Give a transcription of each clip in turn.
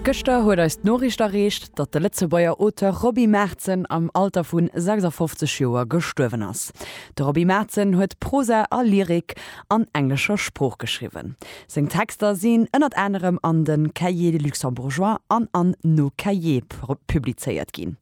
Gëschter huet eis d'Noriicht erreecht, datt de Lëtzebuerger Auteur Roby Maertzen am Alter vu 56 Joer gestuerwen ass. De Roby Maertzen huet Prosa a Lyrik an englescher Sprooch geschriwwen. Seng Texter sinn ënnert anerem an de Cahiers luxembourgeois an an Nos cahiers publizéiert ginn.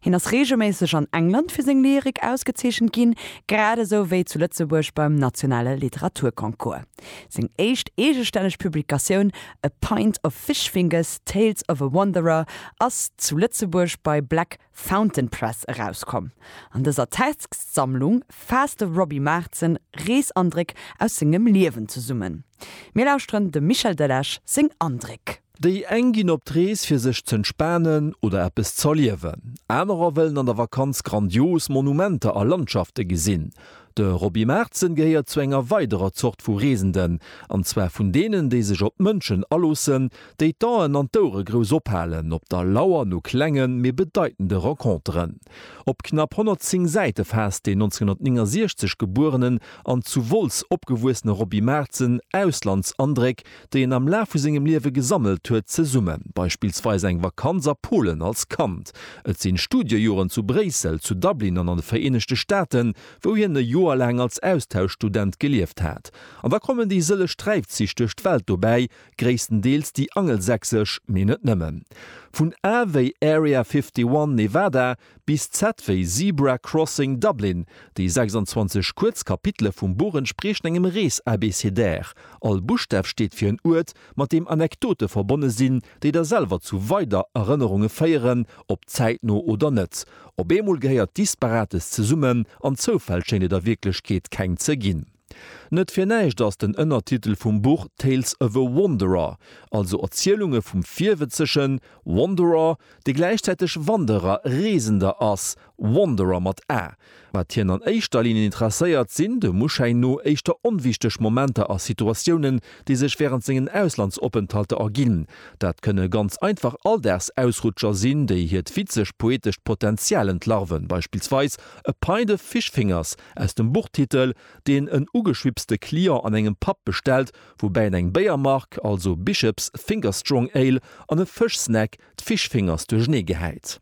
Hien ass reegelméisseg an England fir seng Lyrik ausgezeechent ginn, grad esou wéi zu Lëtzebuerg beim nationale Literaturconcours. Seng éischt eegestänneg Publikatioun A Pint of Fishfingers, Tales of a Wanderer ass zu Lëtzebuerg bei Black Fountain Press erauskomm. An dëser Textsammlung faasst de Roby Maartzen Reesandréck aus sengem Liewen zesummen. Mir lauschteren dem Michel Delage seng Andréck. Déi eng ginn op d'Rees fir sech z'entspanen oder eppes z'erliewen. Anerer wëllen an der Vakanz grandios Monumenter a Landschafte gesinn. De Roby Maartzen gehéiert zu enger weiderer Zort vu Reesenden, an zwar vun deenen, déi sech op d'Mënschen aloossen, déi d'Aen an d'Ouere grouss ophalen op der Lauer no klengen, mee bedeitende Renconteren. Op knapp 110 Säite faasst deen 1969 gebuerenen an zu Wolz opgewuessene Roby Maartzen Auslandsandréck, déi en am Laf vu sengem Liewe gesammelt huet, zesummen. Beispillsweis eng Vakanz a Polen als Kand, et sinn Studiejoren zu Bréissel, zu Dublin an an de Vereenegte Staaten, wou hien e Joer laang als Austauschstudent gelieft hat. An da kommen déi sëlleg Sträifzich duerch d'Welt dobäi, gréisstendeels déi angelsächsesch, mee net nëmmen. Vun A wéi Area 51, Nevada, Bis ZW. Zebra Crossing Dublin, déi 26 kuerz Kapitele vum Buch entspriechen engem Rees-Abécédaire. All Buschstaf steet fir en Uert, mat deem Anekdote verbonne sinn, déi der selwer zu weider Erënnerunge féieren, ob zäitno oder net. Op eemol gehéiert Disparates zesummen, an Zoufäll schéint et a Wierklechkeet keng ze ginn. Net fir näischt ass den Ënnertitel vum Buch Tales of a Wanderer, also Erzielunge vum Virwëtzegen, Wanderer, dee gläichzäiteg Wanderer, Reesender, ass, Wanderer mat a. Wat hien an éischter Linn interesséiert, sinn, dem Uschäin no, éischter onwichteg Momenter a Situatiounen, déi sech wärend sengen Auslandsopenthalter erginn. Dat kënne ganz einfach Alldagsausrutscher sinn, déi hiert witzeg-poetescht Potenzial entlarven, beispillsweis A pint of fish fingers, Aus dem Buchtitel, deen en ugeschwipste Client an engem Pub bestellt, woubäi en eng Béiermark, also Bishops Finger Strong Ale, an e Fëschsnack, d'Fish Fingers, duerchenee gehäit.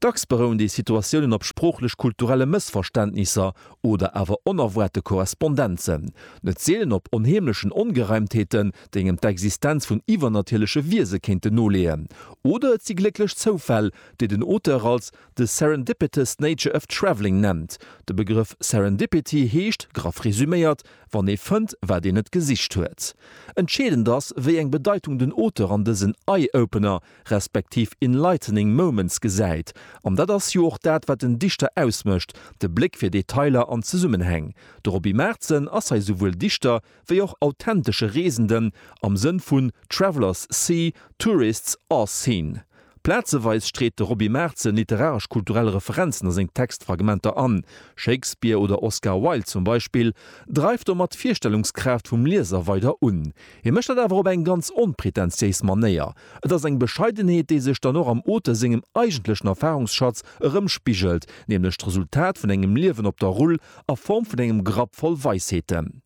Dacks berouen déi Situatiounen op sproochlech-kulturelle Mëssverständnisser oder awer onerwaarte Korrespondenzen, net seelen op onheemlechen Ongereimtheeten, déi engem d'Existenz vun iwwernatierleche Wiese kéinten noleeën. Oder et si glécklech Zoufäll, déi den Auteur als. de Serendipitous Nature of Travelling nennt. De Begrëff Serendipity heescht, graff resuméiert, wann ee fënnt, wat een net gesicht huet. Entscheedend ass, wéi eng Bedeitung den Auteur an dësen Eye-Opener, respektiv Enlightening Moments gesäit. An dat ass jo och dat, wat en Dichter ausmécht, de Bléck fir Detailer an Zesummenhäng. De Roby Maertzen ass hei souwuel Dichter, wéi och authentesche Reesenden, am Sënn vun Travellers see, tourists are seen. Plazeweis street de Roby Maertzen literaresch-kulturell Referenzen a seng Textfragmenter an. Shakespeare oder Oscar Wilde zum Beispill dreift domat d'Virstellungskraaft vum Lieser weider un. Hie mécht dat awer op eng ganz onpretentiéis Manéier. Et ass eng Bescheidenheet, déi sech dann och am Auteur sengem eigentlechen Erfarungsschatz erëmspigelt, nämlech d'Resultat vun engem Liewen op der Rull a Form vun engem Grapp voll Weisheeten.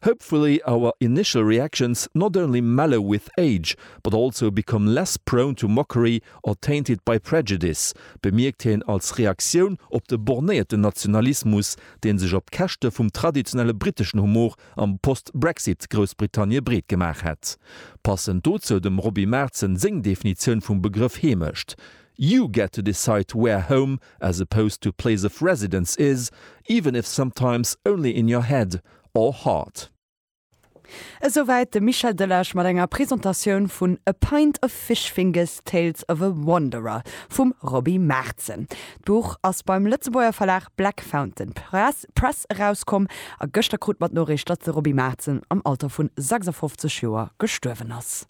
Hopefully our initial reactions not only mellow with age, But also become less prone to mockery or tainted by prejudice, bemierkt hien als Reaktioun op de bornéierten Nationalismus, dee sech op Käschte vum traditionelle briteschen Humor am Post-Brexit-Groussbritannie breet gemaach hätt. Passend dozou dem Roby Maartzen seng Definitioun vum Begrëff Heemecht, You get to decide where home as opposed to place of residence is, even if sometimes only in your head or heart. Esouwäit de Michel Delage mat enger Presentatioun vun A Pint of Fish Fingers, Tales of a Wanderer vum Roby Maertzen. D'Buch ass beim Lëtzebuerger Verlag Black Fountain Press erauskomm a gëschter krut mer d'Noriicht, datt de Roby Maertzen am Alter vu 56 Joer gestuerwen ass.